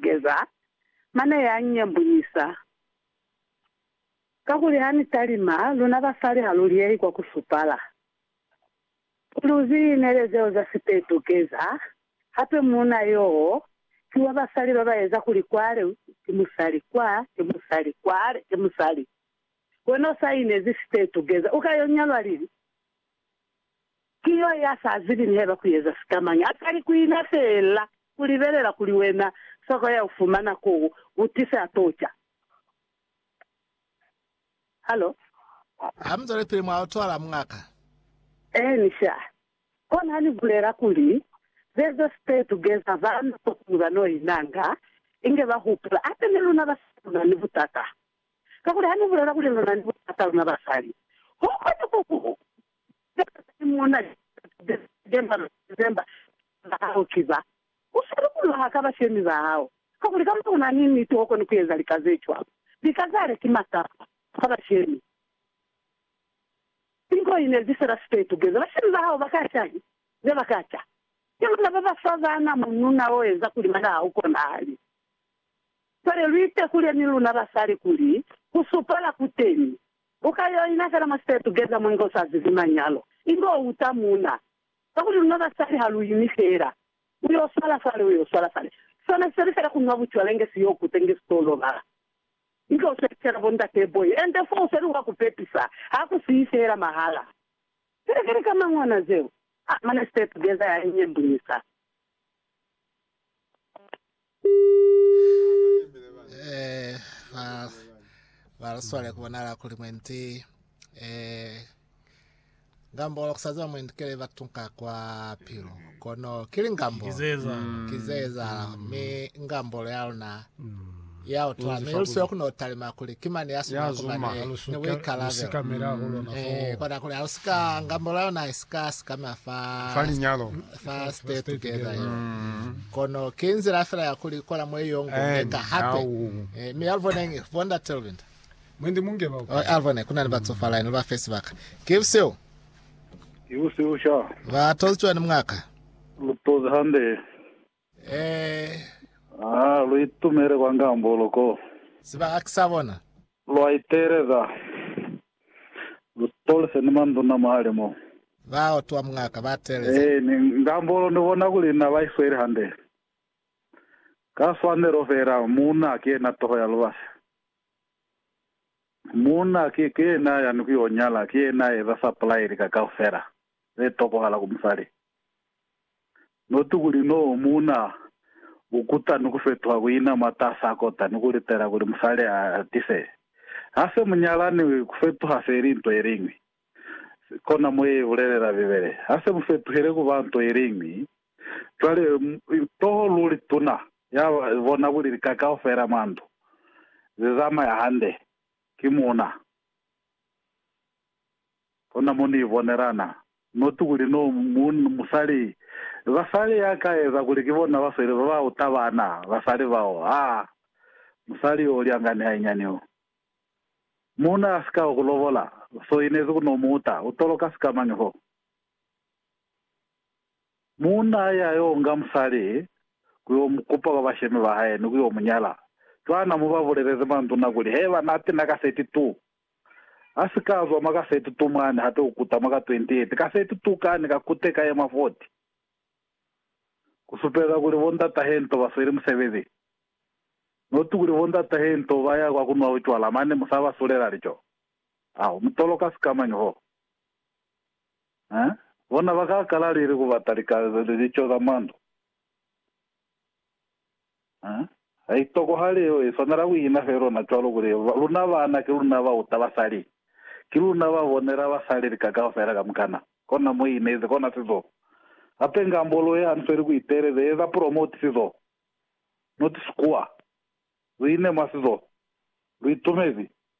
Geza, mane ya nyambunyisa, kakuli ha ni talima, luna basali ha lu liyehi kwa ku supala. Kuli u zi inele zeo za sipetu, Geza, hape muuna yoo ki wa basali ba ba eza kuli kwale ki musali, kwa ki musali, kwale ki musali. Wena u sa inezi sipetu, Geza, u ka yo nyalwa lili? Ki yo ya sa zibi ni haiba ku eza sikamañi, a kali ku ina feela ku libelela kuli wena soko ya u fumana ko u tise a t'o ca. Halo? Ha mu zwale pili mwa utwala, muñaka. Eeni, sha. Kono ha ni bulela kuli, Ze zo stay together, bana kokuli ba n'o inanga, inge ba hupula, hape ni luna basali lu na ni butata. Kakuli ha ni bulela kuli lu na ni butata, luna basali, ho kona ku ku Sicaba sa Simona ni Juda Juda si ke mwa lu zezemba sibaka ba hao ki ba u sa lukulula ha ka bashemi ba hao, kakuli kamba ku na ni niti ho koni ku eza lika ze cwalo. Lika zale ki masapa kwa bashemi. Ki nto i nezi fela si ka itukeza. Bashemi ba hao ba ka ca ki ze ba ka ca. Ki luna ba ba fa bana mununa o eza kuli bana ha u konahali. Cwale lu itekule ni luna basali kuli ku supala ku teni Buka yeo ina fela mwa se tugeza mwa nga u sa zibi manyalo, inge u uta muuna. Kakuli luna basali ha lu imi fela, u yo swala fale, u yo swala fale. Sona si seli fela ku nwa bucwala inge si yo kuta inge si to lobala. Inge u sebisela bo Ndate Boy, ende fo u feli wa ku pepisa, ha ku siyi fela mahala. Silikili ka mang'ona zeo, a mane se tugeza ya inyebunyisa. eh, ba ba lu swale ku bonala kuli mwendi eh ngambo la kusaza mwendi kele ba tunka kwa pilo kono kili ngambo kizeza mm. kizeza me ngambo ya lona mm. ya utwa mi lu sio kuno talima kuli ki mani ya suma kuma ne ni buikalabelo eh kona kuli ha lu sika ngambola yona isika sikama fa fa linyalo fa stay together yo kono ki nzila fela ya kuli kola mwe yo ngo ka hape eh mi alvone ngi vonda telvinda mwendi munge ba oh, alvone kuna ni batsofala ni ba face baka ki sio Ibusiusha. Ba tozitswa ni mwaka. Lutozi hande. Ee. A lu itumele kwa ngambolo ko. Ziba a ki sa bona. Lwa iteeleza. Lu tolise ni manduna mwale mo. Ba utwa mungaka ba teeleza. Ee, ni ngambolo ni bona kuli na ba isweli hande. Ka swanelo feela, muuna ki yena toho ya lubasi. Muuna ki, ki yena ya ni ku yo nyala, ki yena ya eza sapulai lika kaufela ze tokohala ku musali. Noti kuli no muuna u kuta ni ku fetuha ku ina mwa tasa kota ni ku litela kuli musali a tise. Ha se mu nyalani, ku fetuha se li nto ye liñwi. Kona mo ye bulelela Bibele. Ha se mu fetuhile ku ba nto ye liñwi, cwale toho luli tuna ya bona kuli lika kaufela mwa ndu ze zamaya hande, ki muuna. Hona mo ni bonelana noti kuli no muunna ni musali. Basali ya ka eza kuli ki bona ba sweli ba ba uta bana, basali bao, ha musali yo ulyanga ni hainyani yo. Muuna a si ka ku lobola, so inezi ku no mu uta, u toloka sikamañi fo? Muuna a ya yo nga musali ku yo mu kupa kwa bashemi ba hae ni ku yo mu nyala. Cwana mo ba bulelezi manduna kuli, Heba nati na kaseti tu. Ha si ka zwa mwa ka 32 mwani hape u kuta mwa ka 28, ka 32 kani ka kute ka ye mwa 40. Ku supeza kuli bo ndata he nto ba sweli musebezi. Not kuli bo ndata he nto ba ya kwa ku nwa bucwala mane mu sa ba sulela lico. Aho mu toloka sikamañi hoo? Eh? Bona ba ka kala lili ku bata lika, lico za mwa ndu. Ha i tokohali yeo i swanela ku ina fe lona cwalo kuli, Luna baana ki luna ba uta basali, ki luna ba bonela basali lika kaufela kamukana. Kona mo i inezi, kona sizo. Hape ngambolo ye hanfeli ku iteleza eza promote sizo, not sikuwa. Lu ine mwa sizo. Lu itumezi.